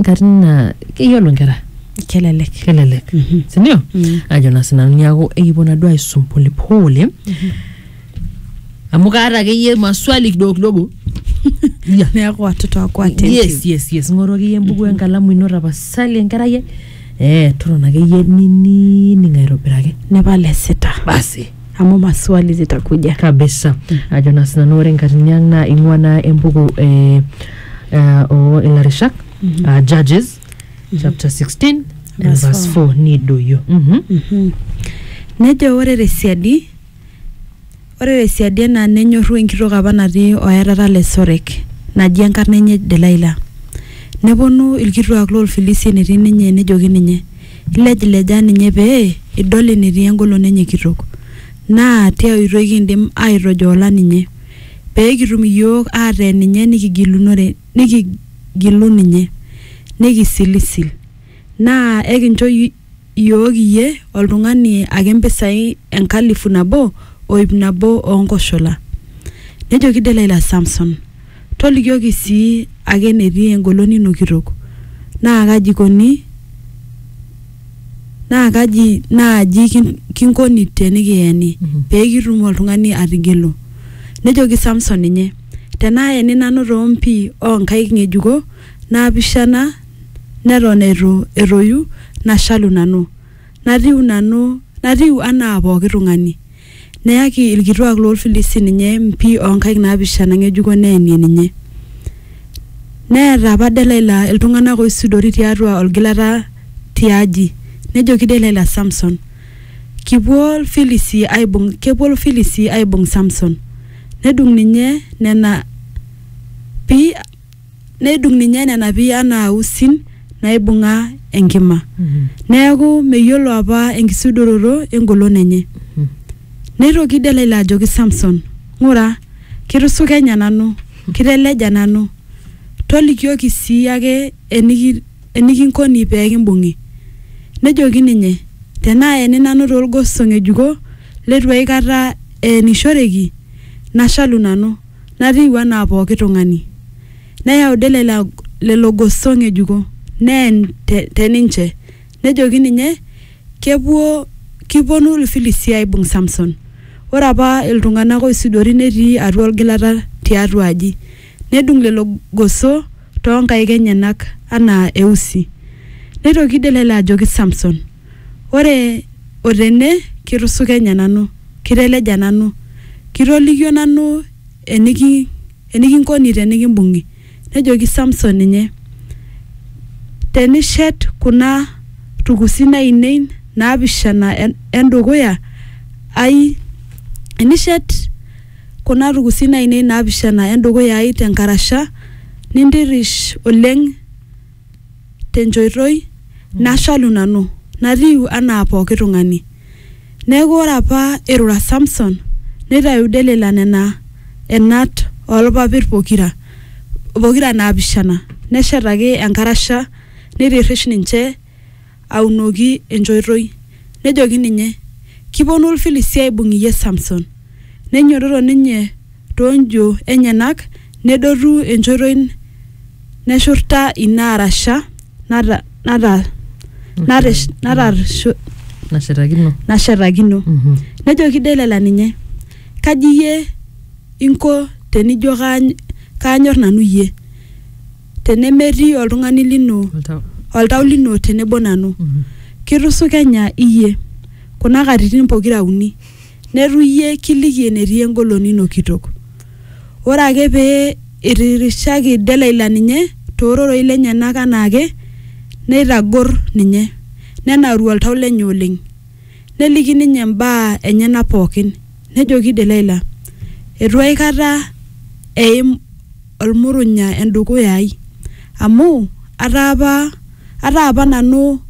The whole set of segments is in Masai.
nkatitin naa keyiolo nkera kelelek kelelek sindio Mm. ajo na sinanu niaku ekipuo naduo aisum polepole amu kaata akeyie maswali kidogo kidogo Ya. neeku watoto wako attentive. yes yes yes ng'oru akeyie embuku enkalamu ino tapasali enkerai ai. eh totona akeyie ninining aitobiraki nepal esita basi amu maswali zitakuja kabisa ajo na sinanu ore nkatini ang naa ing'ua naa embuku eh, uh, o ilarishak mm uh, judges chapter 16 and Verse verse 4 nidoyio mm Mhm. nejo ore tesiadi ore tesiadi ena nenyorru enkitok apa natii oerata le sorek naji enkarna enye delaila neponu ilkituak loolfilisi enetii ninye nejoki ninye ilejilejaa ninye pee idol enetii engolon enye kitok naa tia oitoi kindim aitojola ninye pee kitum iyiook aateen ninye nikigilunore nikigilu ninye nikisilisil naa ekincho iyiook iyie oltung'ani ake impisai enkalifu nabo o ip nabo oo nkoshola. Nejoki Delaila Samson, Tolikioki sii ake enetii engolon ino kitok, naa kaji eikoni naa kaji naaji kin- kinkoni tenikiyeni Mhm. pee kitum oltung'ani atigelu nejoki samson ninye tenaayeni nanu toompi oonkaik ng'ejuko naapishana neton eitu etoyu nashalu nanu natiu nanu natiu anaa pooki tung'ani Neyaki ilkituaak loo Lfilisti ninye mpi oo nkaik naapishana ng'ejuko neenie ninye. Neeta apa Delaila iltung'ana ooisudori tiatua olgilata ti aji. Nejoki Delaila Samson, Kipuo Lfilisti aaibung kepuo Lfilisti aaibung Samson. Nedung ninye nena pi. nedung ninye nena pii anaa usin naibung'a enkima neeku meyiolo apa enkisudoroto engolon enye neitoki delaila ajoki samson ng'ura kitusukenya nanu kiteleja nanu tolikioki sii ake eniki, enikinkoni pee kimbung'i nejoki ninye tenaa eni nanu toolgoso ng'ejuko leitu aikata eenishoreki nashalu nanu natiu anaa pooki tung'ani. Neyau Delila lelo goso ng'ejuko neen te te ninche. Nejoki ninye, Kepuo, kipuonu Ilfilistia aaibung Samson. Ore apa iltung'ana ooisudori netii atua olgilata tiatua aji. Nedung lelo goso too nkaik enyenak anaa eusi. Neitoki Delila ajoki Samson, Ore o tene kitusukenya nanu, kiteleja nanu, kitolikio nanu eniki enikinkoni tenikimbung'i. Nejoki Samson ninye, Tenishet kuna tukusin ainei naapishana e ndukuya ai, enishet kuna tukusin ainei naapishana e ndukuya ai te nkarasha, nintirrish oleng te nchoitoi nashalu nanu, natiu anaa pooki tung'ani. Neaku ore apa eirura Samson, neitayu Delila nena enat oo lpapit pokira, pokira naapishana, neshetaki enkarasha, neitirrish ninche. aunoki enchoitoi. Nejoki ninye, Kipuonu Ilfilistia aaibung iyie Samson. Neinyototo ninye too njo enyenak nedotu enchoitoi neshurta ina arasha nata, nata, natish, natash, nashetakino nashetakino. Mhm. Nejoki Delila ninye, Kaji iyie inko tenijo kaany, kaanyor nanu iyie? tenemetii oltung'ani lino Oltau. oltau lino tenebo nanu Mhm. kitusukenya iyie kuna katitin pokira uni netu iyie kiliki enetii engolon ino kitok ore ake pee itirishaki delaila ninye toororei lenyenak anaake neitagor ninye nenauru oltau lenye oleng neliki ninye imbaa enyenak pookin nejoki delaila etu aikata eim olmurunya endukuya ai amu ataa apa ataa apa nanu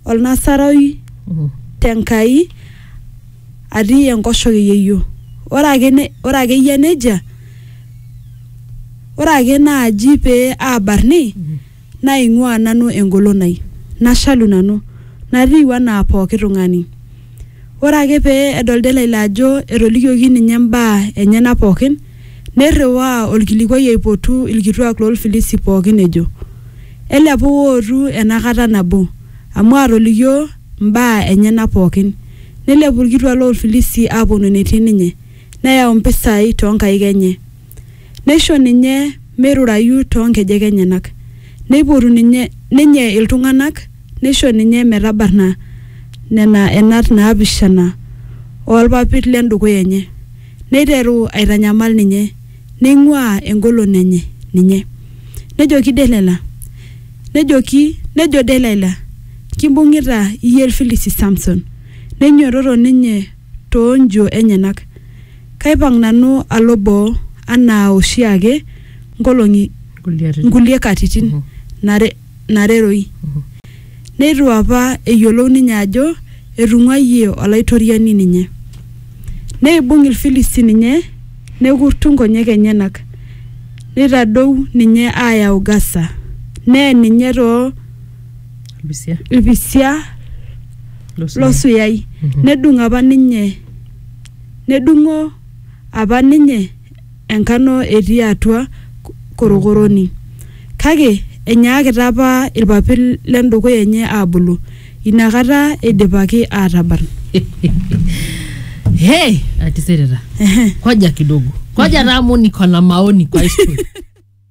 olnasaroi tenkai atii enkoshoke yeyio ore ake ne ore akeyie nejia ore ake naaji pee abarni. Naaing'uaa nanu engolon ai, nashalu nanu, natiu anaa pooki tung'ani. Ore ake pee edol Delaila ajo etolikioki ninye imbaa enyena pooki, neirriwaa olkilikuai aipotu ilkituaak loo Lfilisi pooki ejo, Elepu wootu ena kata nabo, amu aatolikio imbaa enyena pooki. Neilepu ilkituaak loo Lfilisi aapuonu enetii ninye, neyau mpisai too nkaik enye. Neisho ninye meirurayu too nkejek enyenak. Neipotu ninye ninye iltung'anak neisho ninye metabarna nena enat naapishana oo lpapit le ndukuya enye. Neiteru aitanyamal ninye, neing'uaa engolon enye ninye. Nejoki Delaila, nejoki, nejo Delaila, Kimbung'ita iyie Ilfilisti Samson. Neinyototo ninye too njio enyenak. Kaipang nanu alo boo anaa oshi ake nkolong'i nkulie katitin nareroi. Neitu apa eyiolou ninye ajo etung'uayie Olaitoriani ninye. Neibung Ilfilisti ninye nekurtu nkonyek enyenak, neitadou ninye aayau Gasa, neen ninye too Lupisia. ilpisia Losuyai. losuyai Mhm. nedung apa ninye nedung'o apa ninye enkano etii atua ko- korokoroni kake enyaakita apa ilpapit lendukuya enye aabulu inakata eidipaki aatabarn Hey, atisirita. Ehe. Koja kidogo. Koja taa amu niko na maoni kwa hii story.